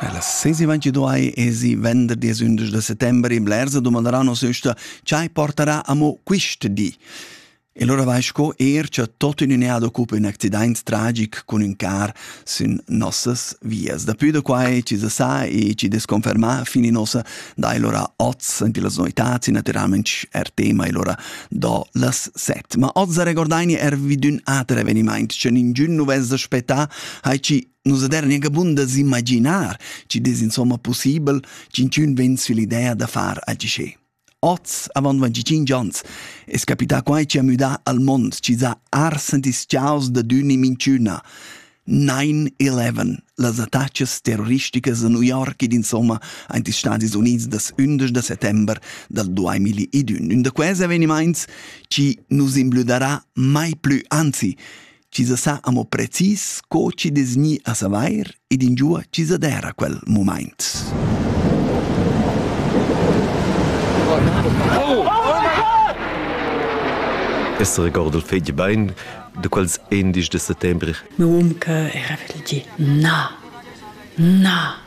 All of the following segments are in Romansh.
Ella sesi ventiduai esi venderdi e undisch da settembre in Blersa domanderà nos üsta chai portarà amo quist di. E lora vai sco er cha tot in unea d'occupa ün accidaint tragic cun ün car sün nossas vias. Dapü da quai ci sa sa e ci desconfermà fini nossa dai lora oz in las noitats e naturalment er tema e lora do las set. Ma oz regordaini er vid ün ater evenimaint, c'en ingün nu vez aspettà hai chi nus ader gnanca bun da s'imaginar, chi dess insomma possibel ch'inchün vegn sull'idea da far agi sche. Oz, avant 25 ans, es capità quai chi ha müdà al mond chi s'ha arsent ischiaus da d'ün in minchüna. 9-11, las attacas terroristicas a New York ed insomma aint ils Stadis Units das 11 de settember dal 2021. Un da quels avenimaints chi nus imblüdarà mai plü, anzi, chi sa sa amo precis co chi des gni a savair ed ingiua chi sa dera quel moment. Essere gordo fege bein, de quals 11 de settembre. Mio um che era vegli dir na, na.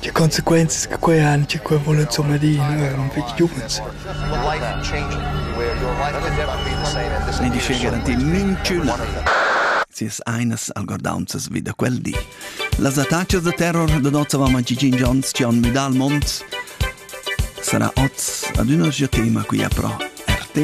Tge consequenzas che quei han, che quei vul insomma dir eran fetg giuvens. Ni di sche garantir minchüna sias ainas algordaunzas vi da quel di. Las attachas da terror da nozzavama Gigin Jones che on müdà al mond sarà oz ad üna tema qui a pro RTR.